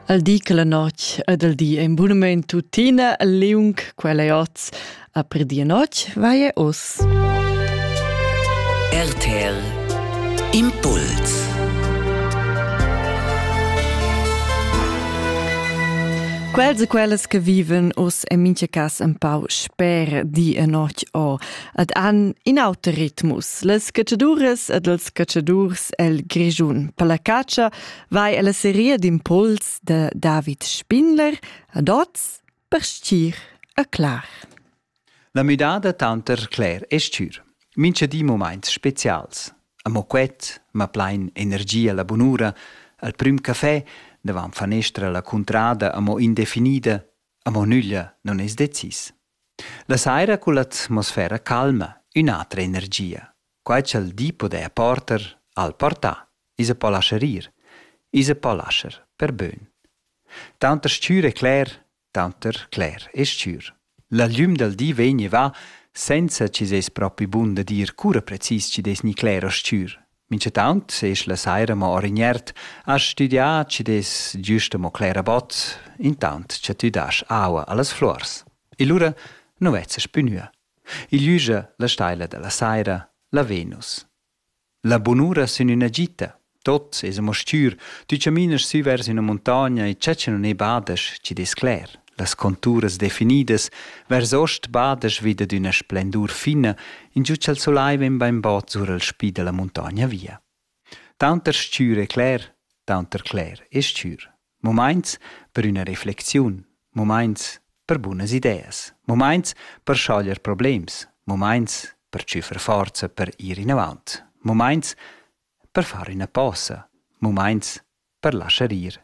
Al di che la notg ed al di en bunament tuttina liung quella è oz a per di e notg vai oss. RTL Impuls Quels e quellas che viven oss en mincha cas en pau sper di e notg o ed han in auter ritmus. Las catchaduras ed els catchadurs el Grischun. Per la catscha vai alla seria d'impuls de David Spindler ad oz per stir a clar. La müdada tanter cler e stür. Mincha di moments specials. Amo quet, ma plain energia la bunura, al prüm café, davan fanestra la cuntrada amo indefinida, amo nüglia non es decis. La saira culla atmosfera calma, ün'atra energia. Quai cha'l di podaja porter, al portà, iza po lascher ir, iza po lascher per bön. Tanter s-chür e cler, tanter cler e s-chür. La glüm dal di vegni va senza chi s'es propi bun da dir cura precis chi'd es ni cler o s-chür, Minchataunt sesch la saira mo orignert, has studià chi dess giusta mo clera bot, intant cha tü dasch aua a las fluors. E lura nu vezzas plü gnü. Il üja, la staila da la saira, la Venus. La bunura sün üna gita. Tot es amo stür, tü chaminas sü vers üna muntogna e chatscha nun e badas chi dess cler. Las conturas definidas vers ost badesch vi dad üna splendur fina, ingiù cha'l solai vegn bainbod sur al spi da la muntogna via. Taunter stür e cler, taunter cler e stür. Mumaints per üna reflexiun, mumaints per bunas ideas, mumaints per schoglier problems, mumaints per tschüffer forza per ir inavant, mumaints per far üna posa, mumaints per laschar ir